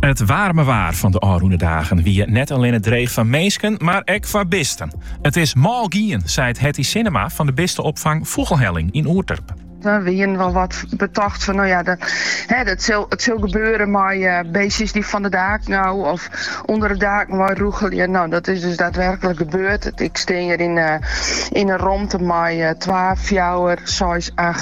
It waarme waar fan de ôfrûne dagen wie net allinne dreech foar minsken, mar ek foar bisten. It is mâl gien, seit Hetty Sinnema fan de bisteopfang Fûgelhelling yn Oerterp. We wienen wol wat betocht fan no ja, it sil gebeure mei beestjes dy't fan de daken ôf of ûnder de daken wei rûgelje. No, dat is dus daadwerklik gebeurd. Ik stean hjir yn in romte mei twa, fjouwer, seis,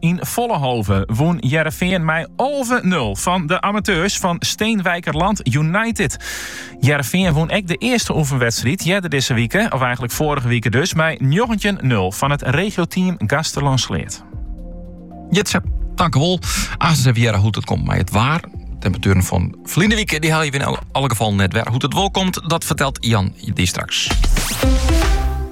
Yn Vollenhove wûn Hearrenfean mei alve nul fan de amateurs fan Steenwijkerland United. Hearrenfean wûn ek de earste oefenwedstriid earder dizze wike, of eigentlik foarige wike dus, mei njoggentjin nul fan it regioteam Gaasterlân-Sleat. Jitse, tankewol. Aanst even hearre hoe't it komt mei it waar. Temperatueren fan ferline wike dy helje wy yn alle gefal net wer. Hoe't it wol komt, dat fertelt Jan dy straks.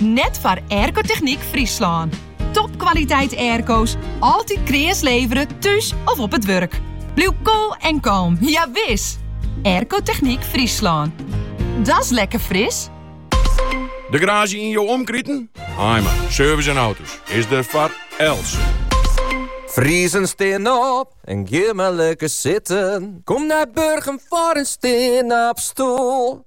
Net foar Aircotechniek Fryslân. Topkwaliteit airco's, altyd kreas levere, thús of op it wurk. Bliuw koel en kalm, ja wis! Aircotechniek Fryslân. Da's lekker fris! De garage yn jo omkriten? Haaima Service en Auto's is der foar elts. Friezen, stean op en gean mar lekker sitten. Kom nei Burgum foar in stean-op-stoel.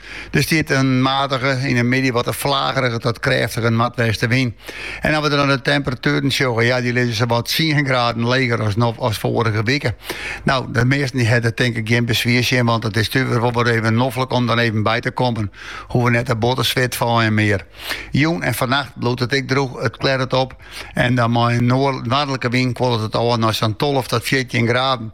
Der stiet in matige, yn de middei wat in flagerige tot krêftige noardwestewyn. En as we dan de temperatueren sjogge, ja, dy lizze sawat tsien graden leger as, as foarige wike. Nou, de measten die hebben denk ik geen bezwier zien, want het is natuurlijk wel weer even noffelijk om dan even bij te komen. Hoeven net de botten zwit van en meer. Joen en vannacht bloedt het ik droeg, het klert het op. En dan maar een noordelijke wind kwollet het al naar zo'n 12 tot 14 graden.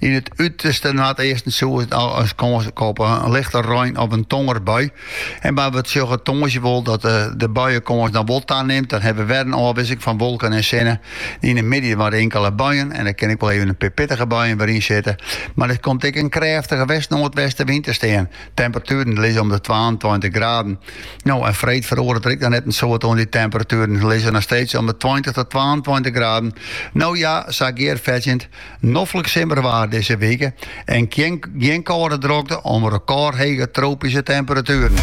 Yn it uterste noardeasten soms wat kâns op lichte rein of in tongersbui. En dan, we sjogge tongersdei wol dat de buienkâns noch wol tanimt. Dan hawwe we wer in ôfwisseling fan wolken en sinne. Yn de middei wer inkele buien en der kin ek wol even in pear pittige buien wêze, in sinne. Mar der komt ek in krêftige west-noardwestenwyn te stean. Temperatueren lizze om de twaentweintich graden. No, en freed feroaret der ek noch net in soad oan dy temperatueren. Lizze noch steeds om de tweintich tot twaentweintich graden. No ja, sa gearfetsjend, Noflik simmerwaar dizze wike en gjin kâlde drokte om rekôrhege tropyske temperatueren.